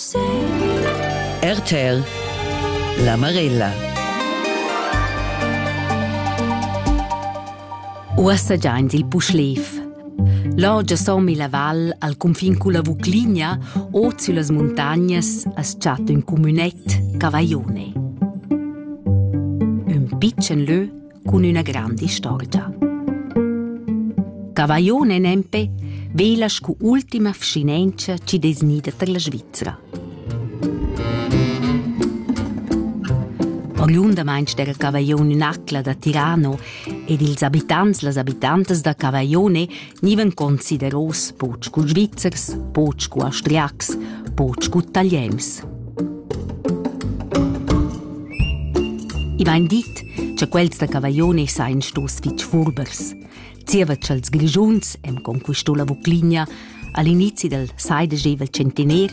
RTL La Marella Uossa giaint il Puschlev. L'orgia somi la val al confin culla Vucligna o süllas muntagnas as chatta ün cumünet, Cavaione. Ün pitschen lö cun üna granda istorgia. Cavaione nempe vela scu ultima vschinentscha chi dess gnida tar la Svizra. Oriundamaint dera Cavaione Nacla da Tirano ed ils abitants las abitantas da Cavaione nivan consideros buc scu Svizzers, buc scu Austriacs, buc scu Italiens. I vain dit, che quels da Cavaglione sain stos fitg furbers. Zieva cha'ls Grischuns, em conquisto la Vucligna, all'inizi del seidegevel centener,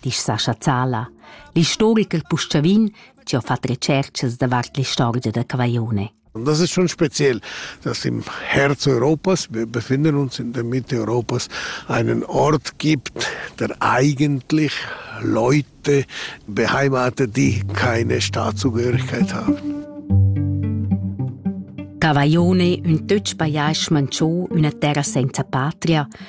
disch Sascha Zala, l'istoricher quel Puschavin chi ha fat retscherchas davart l'istorgia da Cavaione. Das ist schon speziell, dass im Herz Europas, wir befinden uns in der Mitte Europas, einen Ort gibt, der eigentlich Leute beheimatet, die keine Staatszugehörigkeit haben. Cavaione, un töch pajais manchò, una terra senza patria,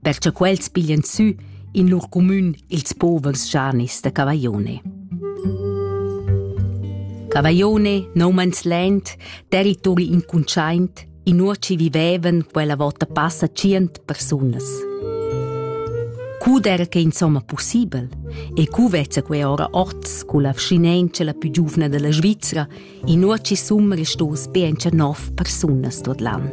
perche quels piglian sü in lur cumün ils povers schanis da Cavaglione. Cavaglione, nomans lent, territori incuntschaint, in uoci vivevan quella vota passa cient persunas. Cud era che insomma possibel e cu vezza quei ora orts cu la vschinenza la più giuvna della Svizzera Inuochi sun restos be encha nov persunas tuot l'an.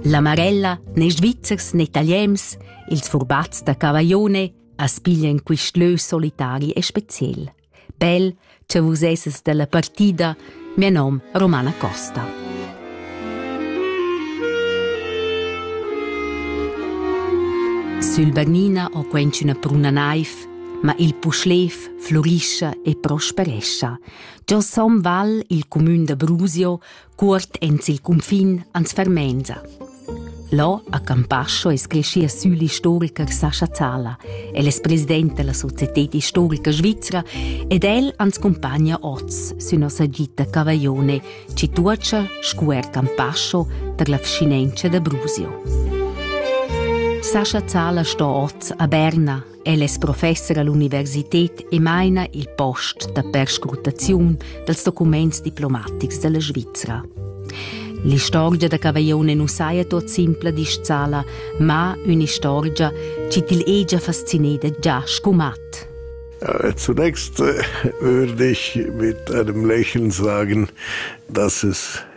La Marella ne Svizzers ne Italiens, ils furbats da Cavaglione, as piglian quist lö solitari e speciel. Bel, che vus esses della partida, mio nom Romana Costa. Sul Bernina ho quenc üna bruna naiv ma il puschlev flurischa e prosperescha. Giò Son Val, il cumün da Brusio, cuort ens il cunfin ans fermenza. Là a Campascio es creschia sül istoriker Sascha Zala. El es president della Societät Historica Svizzera ed el ans compagna oz sü nossa gita Cavaglione, ci tuocha scuer Campascio per la vcinenza da Brusio. Sascha Zala sto oz a Berna, El es professer all'universited e maina il post da perscrutaziun dals documents diplomatics della Svizra. L'istorgia da Cavaillone nu saja tot simpla disch sala, ma ün'istorgia chi til hegia fascineda già scumat. Äh, zunächst äh, würde ich mit einem Lächeln sagen, dass es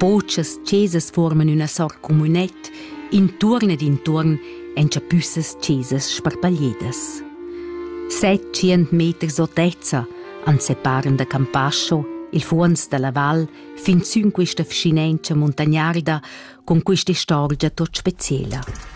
Pochas chesas forman üna sort communet intuorn ed intuorn en chapüssas chesas sparpagliedas. Settschient meters otezza ans separan da Campascio, il fuonz dalla val, fin sün quista vschinentscha muntagnarda con quista istorgia tot speciela.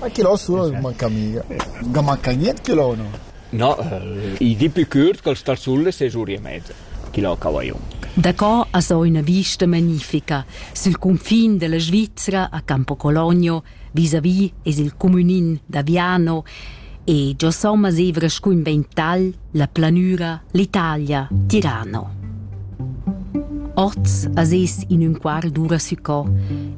Ma che l'ho sura manca mica. Ga manca niente che l'ho no. No, i di più curt ch'els tarsulle sei giù e mezza. Chi l'ho cavaglion. Daco as ho üna vista magnifica sül confin della Svizzera a Campo Cologno vis-à-vis es il comünin da Viano e giò somma zevra scun vental la planüra l'Italia Tirano. Oz as es in ün quar dura sü co,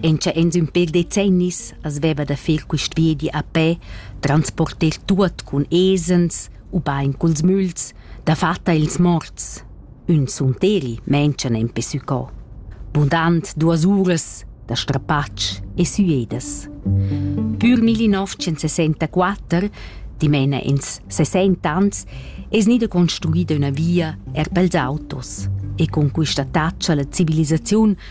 en cha ens ün per decennis As veva da fer quist viedi a pè, transporter tuot cun esens, ubain culs müls, dafatta ils morts. Ün sunteri menschan empe sü co. Bundant duos uras da strapatsch e süedas. Pür 1964, dimena ins 60 ans, es gnida construida üna via er pels autos e con quista taccia la civilisaziun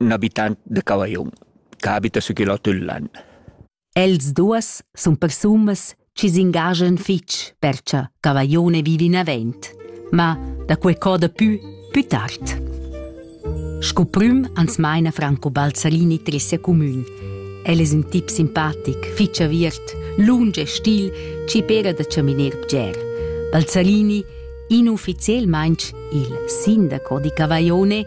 ün abitant da Cavaillon che abita sü il Hotel Lan. Els duas sun persunas chi s'ingagian fich per cha Cavaillone vivi navent, ma da quei coda pü pü tard. Sco prüm ans maina Franco Balzarini tre sia comün. El es ün tip simpatic, fich aviert, lung e stil, chi pera da chaminer bger. Balzarini, inufficielmaing il sindaco di Cavaillone,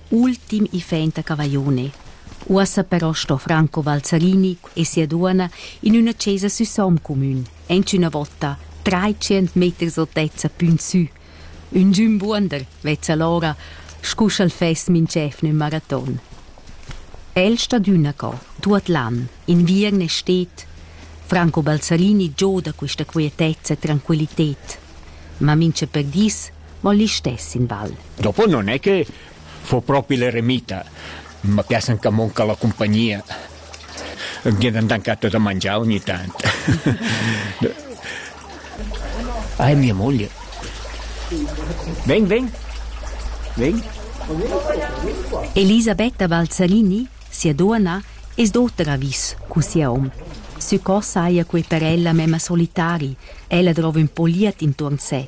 ultim iffaint a Cavaglione. Uossa però sto Franco Valzarini e sia duonna in üna chesa sü Soomcomün, aint üna votta, traitschient meters otezza pün sü. Ün giün buonder vezza l'ora, scu sch'el fess minch'efna ün maraton. El stat üna co, tuot l'an, inviern e stet. Franco Balzarini gioda quista quietezza e tranquillited. Ma mincha per dis mo listess in val. Dopo non è che fu proprio l'eremita, ma piace anche manca la compagnia. Gliedern dankato da mangiare ogni tanto. ah, è mia moglie. Ven, ven. Ven. Elisabetta Balzanini, sia donna, es d'auter avis cu sia hom. Su co saia quei per ella mema solitari, ella drova un po liat intorn se,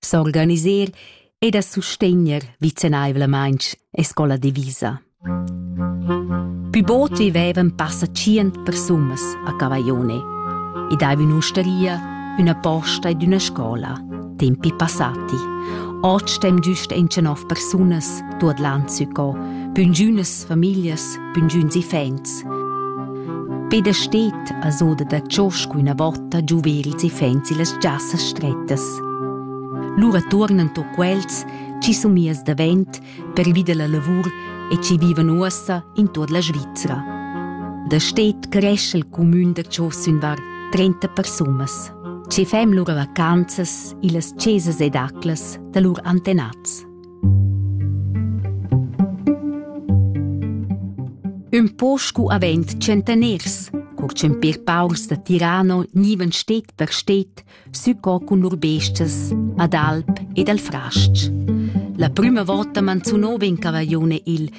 s'organiser e da sustegner vicenaivlamaintg e scola divisa. Pü bod vivevan passa tschient persunas a Cavaione ed hai in ustaria, üna posta ed üna scola, tempi passati. Oz stem düst in nov persunas tuot l'an sü co, püngünas famiglias püngiüns iffaints. Peder steht a soda da ciosc üna vota giuvels iffaints illas giassas strettas. Lura tuornan to quels chi sun mias davent per vider la lavur e chi vivan uossa in tuot la Svizzera. Da steht cresce il cumün da Cios ün var 30 persunas. Ci fem lura vacanzas illas cesas ed aclas da lur antenats. Ün po scu avend centaners, cur ch'empir paurs da Tirano gnivan stet per stet sü co cun lur bestias ad alp ed al fras-ch. La prüma vota manzunova in cavaglione il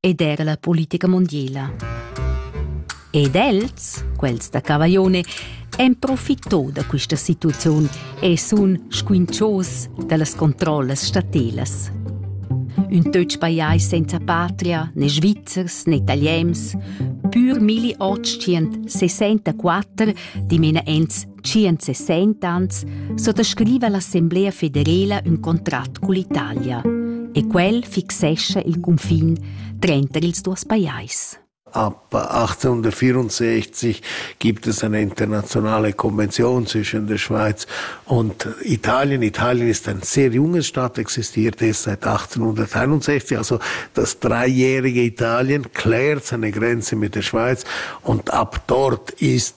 ed era la politica mondiala. Ed els, quels da Cavaglione, en profitò da questa situaziun e sun squinchos dallas controllas statelas. Un töch pajais senza patria, né svizzers né italiens, pur 1864 dimena ents 160 suttascriva l'Assemblea federela ün contrat cull'Italia e quel fixescha il cunfin tranter ils duos pajais. Ab 1864 gibt es eine internationale Konvention zwischen der Schweiz und Italien. Italien ist ein sehr junges Staat, existiert erst seit 1861, also das dreijährige Italien klärt seine Grenze mit der Schweiz und ab dort ist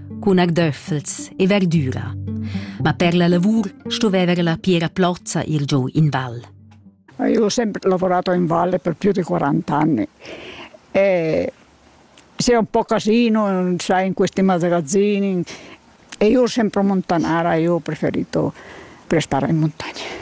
cun agdöffels e verdüra. Ma per la lavur stoveva la Piera Plozza ir giù in val. Io ho sempre lavorato in valle per più di 40 anni e sei un po' casino, sai, in questi magazzini e io ho sempre montanara, io ho preferito per stare in montagna.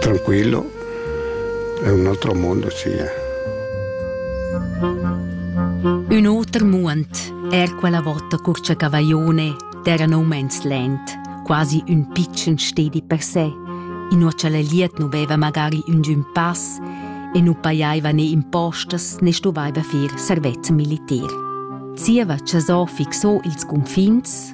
Tranquillo, è un altro mondo, sì. Un oter muond, er quella vota curcia cavaglione, terra no mens lent, quasi un piccen stedi per sé, inuocha la liet nu veva magari un giun pass e nu paiaiva né impostas né stuvaiva fir servez militar. Zieva cha so fixò ils cunfins,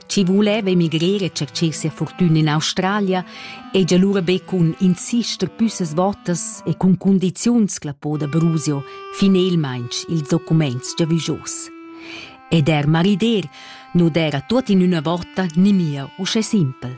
chi vuleva emigrer e tschercher sia fortüna in Australia, hegia lura be cun insister püssas votas e cun cundiziuns clapò da Brusio finelmaing ils documents giavüschos. Ed er marider nu d'era tuot in üna vota nimia uschè simpel.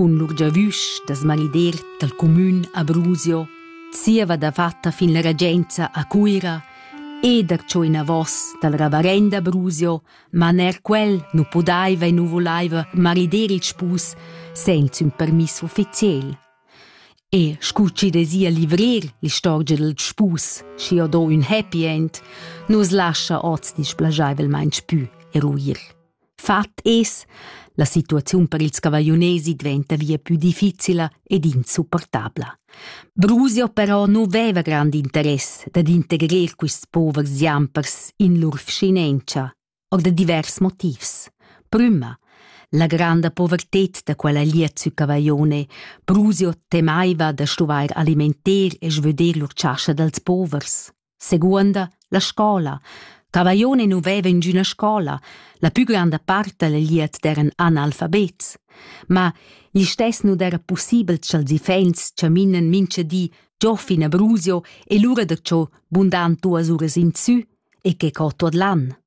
cun lur giavüsch da smanider dal cumün a Brusio, zieva dafatta fin la regenza a Cuira e darcho inavos dal ravarenda Brusio, ma ner quel nu pudaiva e nu volaiva marider il spus senza ün permiss ufficiel. E scu chi dezia livrir l'istorgia dal spus, schi ho do ün happy end, nu's lascha hoz displajaivelmaing pü eruir. Fat es, la situaziun per ils cavagliunesi diventa via più difficila ed insupportabla. Brusio però nu veva grand interess dad integrer quists povers giampers in lur vschinentscha, or da divers motivs. Prüma, la granda poverted da quella liet sü cavaglione, Brusio temaiva da stuvair alimenter e svöder lur chascha dals povers. Seguonda la scola. Cavaglione nu veva ingüna scola, la pü granda part dal liet d'eran analfabets. Ma gli stess nu d'era pussibel cha'ls iffaints chaminan mincha di Giofin a Brusio e lura da cho bundan duas uras insü e che co tuot l'an.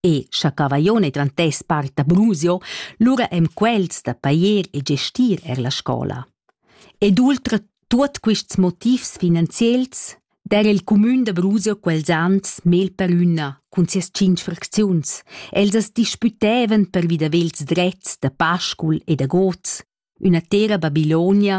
E scha Cavaglione drantess part da Brusio, lura em quels da pajer e gestir er la scola. Ed ultra tuot quists motivs finanziels der il cumün da Brusio quels ans mel per üna cun sias cinc fracziuns. Els as dispütevan per vi da vels drets da Pascul e da Goz, üna tera Babilonia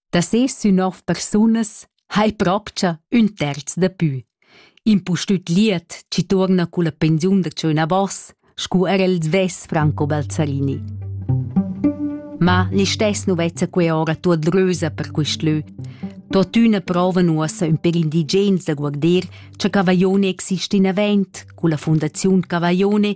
Da ses sün nov persunas ha ei propcha ün terz dapü. Impustüt liet chi tuorna culla pensiun da tscheu navos, scu era il svess Franco Balzarini. Ma listess nu vezza quei ora tuot rösa per quist lö. Tuottüna prova nuossa ün per indigens da guarder cha Cavaione exista in avent culla Fondaziun Cavaione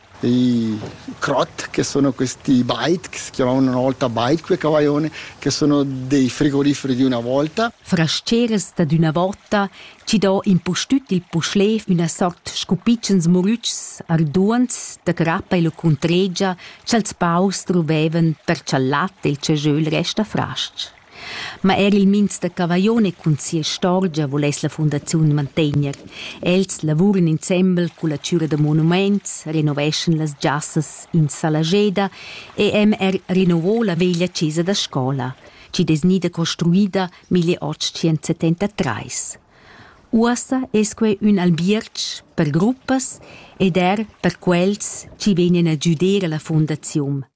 i crot che sono questi bike, si chiamavano una volta bike cavaione, che sono dei frigoriferi di una volta. Frascheras dad üna vota chi do impustüt il puschlev üna sort scupitschens murütschs arduants da crappa e lo cuntregia cha'ls paurs druvevan per cha'l lat del cejöl resta fras-ch. Ma er il minz da Cavaglione cun sia istorgia vuless la fundaziun mantegner. Els lavuran insembel culla chüra da monumaints, renoveschan las giassas in Salageda e MR rinnovò la veglia chesa da scola, chi es gnida construida 1873. Uossa es quai ün albierg per gruppas ed er per quels chi vegnan a güder a la fundaziun.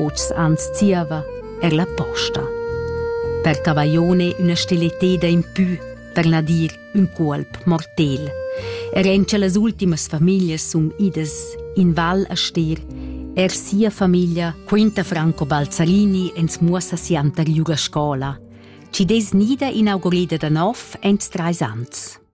Oz ans zieva er la posta. Per Cavaione üna stileteda in pü, per na dir ün cuolp mortel. Er en che las ultimas famiglias sun idas in val a stir, er sia famiglia quenta Franco Balzarini ins muossa sianter giù a scola. Ci des nida inaugurida da nov ents treis ans.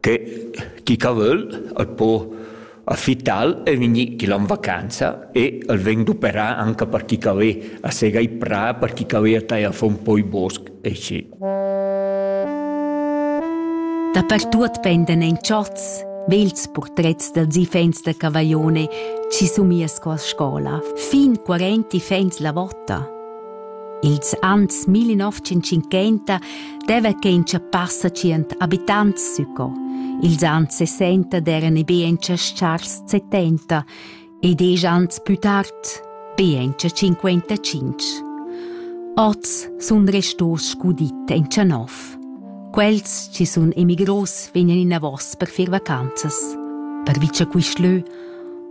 che chi ca völ al po affittar e vegnir chi l'han vacanza e al vegn d'operar anche per chi ca ve a sega i prà, per chi ca ve a tai a fo un po i bosc e schi. Dapertuot pendan in chots vels purtrets dals ifens da Cavaione chi sumia sco a scola, fin 40 ifens la vota. Ils anns 1950 deva che in passa tschient abitants suco. Ils anns 60 eran e be en chars 70 e diesch anns più tard be en 55. Oz sun restos scudit en Tschanov. Quels ci sun emigros vegnan inavos per fir vacanzas, per vice quist lö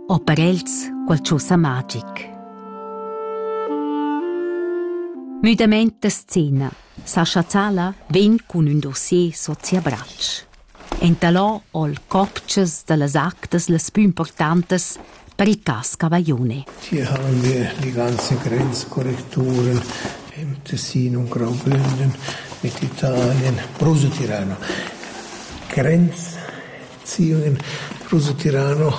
o per els qualchosa magic. Müdamaint da scena. Sascha Zala vegn cun ün dossier sot sia bratsch. Entalò ho'l copchas da las actas las pü importantas per il cas Cavaglione. Hier haben wir die ganze Grenzkorrekturen im Tessin und Graubünden mit Italien, Bruso Tirano. Grenz Ziun in rusutirano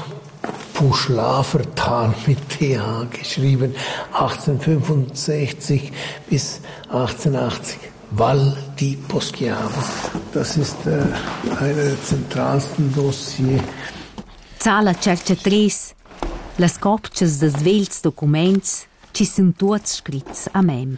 Puschlafer Tal mit th geschrieben, 1865 bis 1880. Val di Poschiavo. Das ist äh, eine der zentralsten Dossier. Zala cercetris, las copchas da svelts documents, chi sun tuots scrits a mem.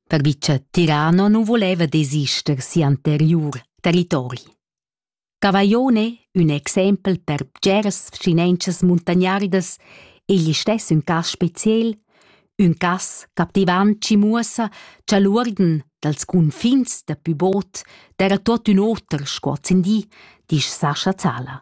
perche cha Tirano nu voleva desister si'anteriur territori. Cavaillone, ün exempel per bgeras vschinenchas muntagnardas, egl istess ün cas speziel, ün cas captivant chi muossa cha l'uorden dals cunfins da pü bod d'eira tuot ün oter sco ozzendi, disch Sascha Zala.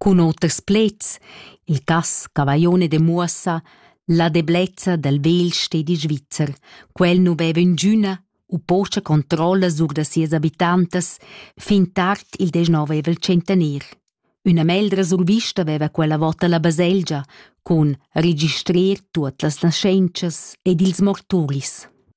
cun oters pleds, il cass Cavaglione demuossa la deblezza dal vegl stedi svizzer. Quel nu veva ingüna u pocha controlla sur da sias abitantas fin tard il deznovevel centener. Üna meldra survista veva quella vota la baselgia cun registrer tuot las naschentschas ed ils morturis.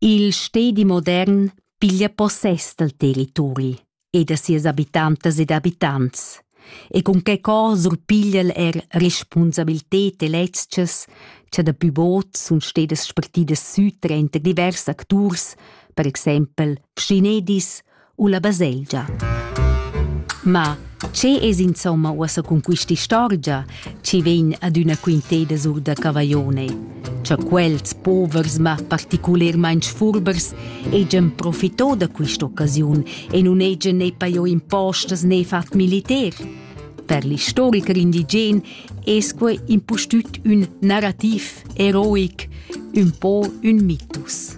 Il stedi modern piglia possess dal territori e da sias habitantas ed habitants e cun che co surpiglia'l er respunsabilted e lezchas cha daplü bod sun stedas spartidas sü tranter divers acturs, per exaimpel schinedis u la baselgia. Ma che es insomma uossa cun quist'istorgia chi vegn adüna quinteda sur da Cavaione? Cha quels povers ma particulermaing sfurbers hegian profitò da quist'occasiun e nun hegian ne pajò impostas ne fat militer? Per l'istoricher indigen es quai impustüt ün narrativ eroic, ün po ün mitus.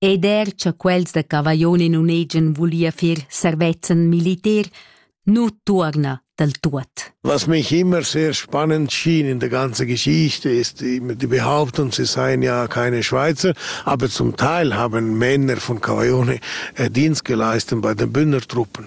ed er cha quels da Cavaglione nun hegian vulìa fer servezzan militar, nu tuorna dal tuot. Was mich immer sehr spannend schien in der ganzen Geschichte ist die Behauptung, sie seien ja keine Schweizer, aber zum Teil haben Männer von Cavaglione äh, Dienst geleistet bei den Bündnertruppen.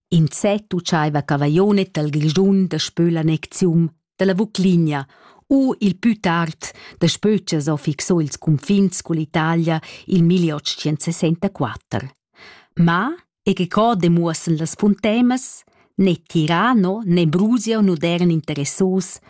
In zet utschaiva Cavaglionet dal Grischun daspö l'annecziun da la Vucligna u il pü tard daspö cha s'ho fixo ils cunfins cull'Italia il 1864. Ma, e che co demuossan las funtemas, né tirano né brusio nu d'eran interessos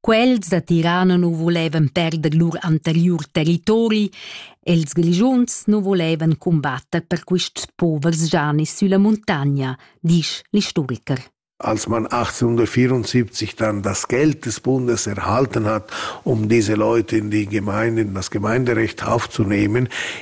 Quels da Tirana nu volevan perder lur anteriur territori, els glischuns nu volevan cumbatter per quists povers gianis sülla muntagna, disch l'istoriker. Als man 1874 dann das Geld des Bundes erhalten hat, um diese Leute in die Gemeinden, das Gemeinderecht aufzunehmen,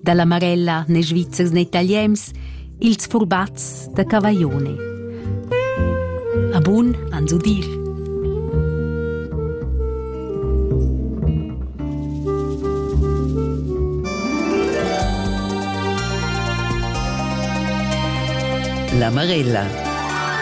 dalla Marella ne Svizzers ne Italiens, ils furbats da Cavaglione. A bun an su dir. La Marella